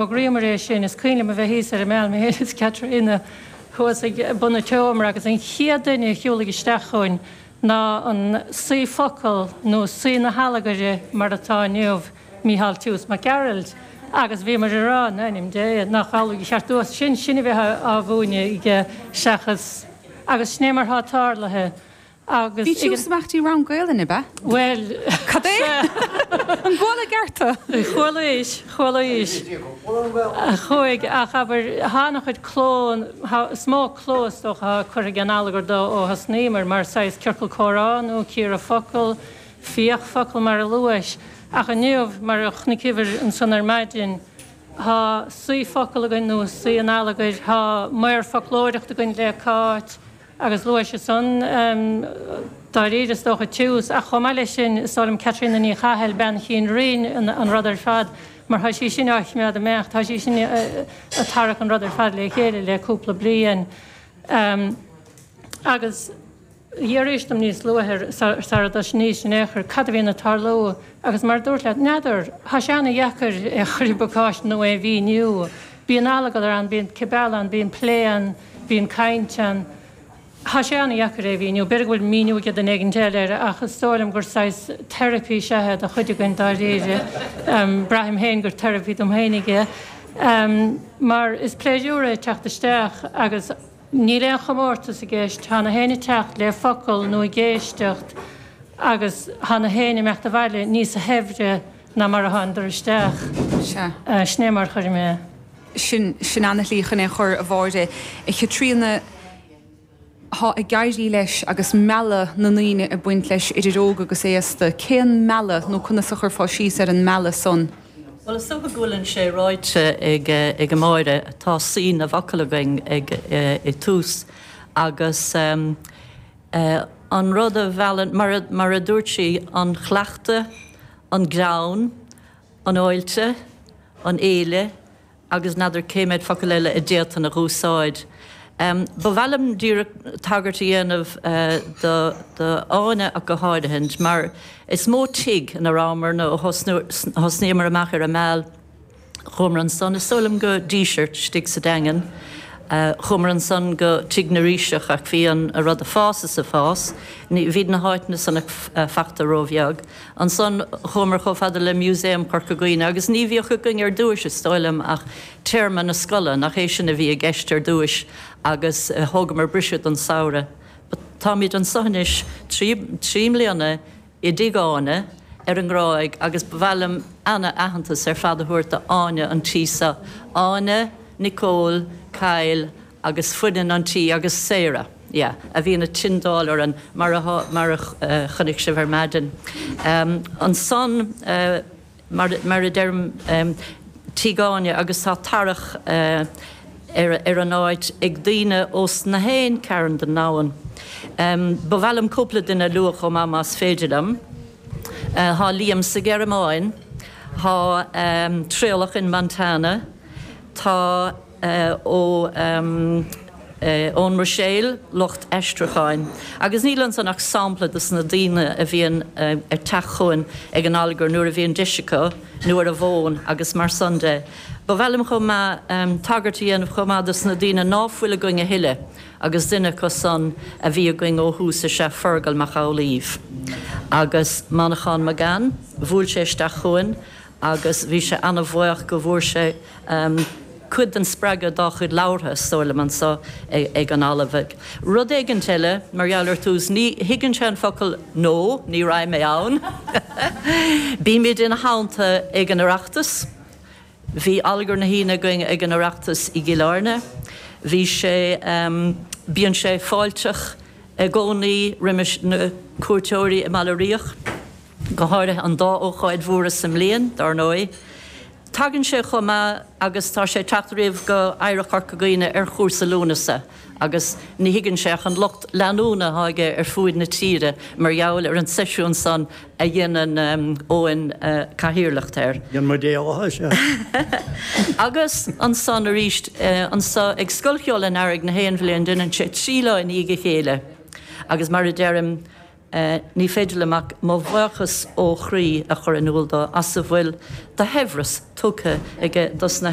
Fhógraíomar é sin, is cuimhin liom a bheith thíos ar an Meal, mé féin is Caitríona, thuas ag bun an tseomra agus an chéad duine a shiúlaigh isteach chugainn ná an Saoi Focal, nó Saoi na hAllagaire mar atá inniu, Mícheál Toose Mac Gearailt. Agus bhíomar ag rá, in ainm Dé, nach amhlaidh a cheart dó san sinn a bheith á mhúineadh aige seachas. Agus sin é mar atá tarlaithe. Bhí tú sa bhfeachtaí rang Gaolainne, ab ea? Bhuel. Cad é? An gcuala i gceart é? Chualaís, chualaís. Chuaigh, ach abair, tá an-chuid cló, is mó cló is dócha atá curtha ag an allagar dó ó thosnaíomar, mar saghas ciorcal comhrá nó cíoradh focal, fiach focal mar a luais. Ach inniu, mar a chonaiceamar ansan ar maidin, tá saoi focal againn, nó saoi an allagair, tá maor foclóireacht againn le Cáit, Agus luais ansan dáiríre, is dócha, Toose, ach chomh maith leis sin, is dóigh liom Caitríona Ní Chathail, bean chinn riain, an rud ar fad, mar tá sí sin á choimeád ag imeacht, tá sí sin a' tarrac an rud ar fad le chéile le cúpla bliain. Agus d'fhiafraís dom níos luaithe, sara dtosnaíos in aon chor, cad a bhíonn a' tarlú, agus mar a dúrt leat, n'fheadar, tá sé an-deacair é a chur i bpacáiste nó é a mhíniú. Bíonn allagar ann, bíonn cibeal ann, bíonn plé ann, bíonn caint ann. Tá sé an-deacair é a mhíniú. B'fhéidir go bhfuil míniú aige duine éigint eile air ach is dóigh liom gur saghas therapy is ea é do chuid againn, dáiríre. Braithim féin gur therapy dom féinig é mar is pléisiúr é teacht isteach agus níl aon chomórtas i gceist, tá gach éinne ag teacht le focal nó ag éisteacht agus tá gach éinne ag imeacht abhaile níosa shaibhre. ná mar a thánadar isteach. Sea. Sin é mar a chuirfinn é. Sin, sin ana-shlí chun é chur, a Mháire, a Chaitríona. Tá ag éirí leis agus mealladh na ndaoine ag baint leis, idir óg agus aosta. Cén mealladh, nó conas a chuirfeá síos ar an mealladh san? Bhuel, is dócha go bhfuileann sé ráite ag, ag Máire, tá saoi na bhfocal againn ag, ag Toose agus. An rud a mheallann, mar a dúirt sí, an chuileachta, an greann, an fháilte, an fhéile agus n'fheadar cé méid focal eile a d'fhéadfainn a úsáid. Ba mhaith liom díreach tagairt a dhéanamh do Áine ach go háirithe mar is mó tigh ina rabhamar nó thosnaíomar amach ar an Meal. Chuamar ansan is dóigh liom go Díseart istigh sa Daingean. Chuamar ansan go Tigh na Ríseach ach bhí an rud a' fás is a' fás. Ní, bhíd na háiteanna san ag fachta róbheag. Ansan chuamar chomh fada le Músaem Chorca Dhuibhne agus ní bhíodh againn ar dtúis is dóigh liom ach téarma na scoile, nach é sin a bhí i gceist ar dtúis agus thógamar briseadh don samhradh. But táimid anso anois trí, trí mbliana i dTigh Áine ar an nGráig agus ba mhaith liom ana aitheantas ar fad a thabhairt do Áine an tí seo, Áine, Nicole, Kyle agus foireann an tí agus Sarah, yeah, a bhíonn ag tindeáil orainn mar a chonaic sibh ar maidin. Ansan. mar a deirim Tigh Áine, agus tá tarrac ar an áit ag daoine ós na haon cearn den ndomhan. Ba mhaith liom cúpla duine a lua chomh maith más féidir liom. Tá Liam sa Ghearmáin, tá Traolach in Montana, tá. ó ón mBruiséil, lucht aistriúcháin. Agus níl ansan ach sampla dos na daoine a bhíonn ag teacht chugainn ag an Allagar nuair a bhíonn deis acu, nó ar an bhfón agus mar san de. Ba mhaith liom chomh maith tagairt a dhéanamh chomh maith dos na daoine ná fuil againn a thuilleadh agus duine acu san a bhí againn ó thús is ea Feargal Mac Amhlaoibh. Agus Manchán Magan, bhuail sé isteach chugainn, agus bhí sé an-bhuíoch go bhfuair sé cuid den spreagadh dá chuid labhartha, is dóigh liom, anso ag an Allagar. Rud éigint eile, mar gheall ar Toose, ní thuigeann sé an focal no, ní raghaidh mé ann. Bímid ina theannta ag an Oireachtas. Bhí Allagar na hAoine againn ag an Oireachtas i gCill Airne. Bhí sé, bíonn sé fáilteach i gcónaí roimis na cuairteoirí i mBaile Riach. go háirithe an dá ócáid mhóra sa mbliain, dár ndóigh. Tagann sé chomh maith agus tá sé ag teacht riamh go Oidhreacht Chorca Dhuibhne ar chúrsa Lúnasa agus ní thuigeann sé ach an lucht leanúna atá aige ar fuaid na tíre mar gheall ar an seisiún san a dhéanann Eoin cathaoirleacht air. Déan mo dhealaithe is ea. Agus ansan arís anso ag Scoil Cheoil an Earraigh na haon bhliain deineann sé trí lá i ndiaidh a chéile agus mar a deirim, Ní féidir liom ach mo bhuíochas ó chroí a chur in iúl dó as a bhfuil de shaibhreas tugtha aige dos na.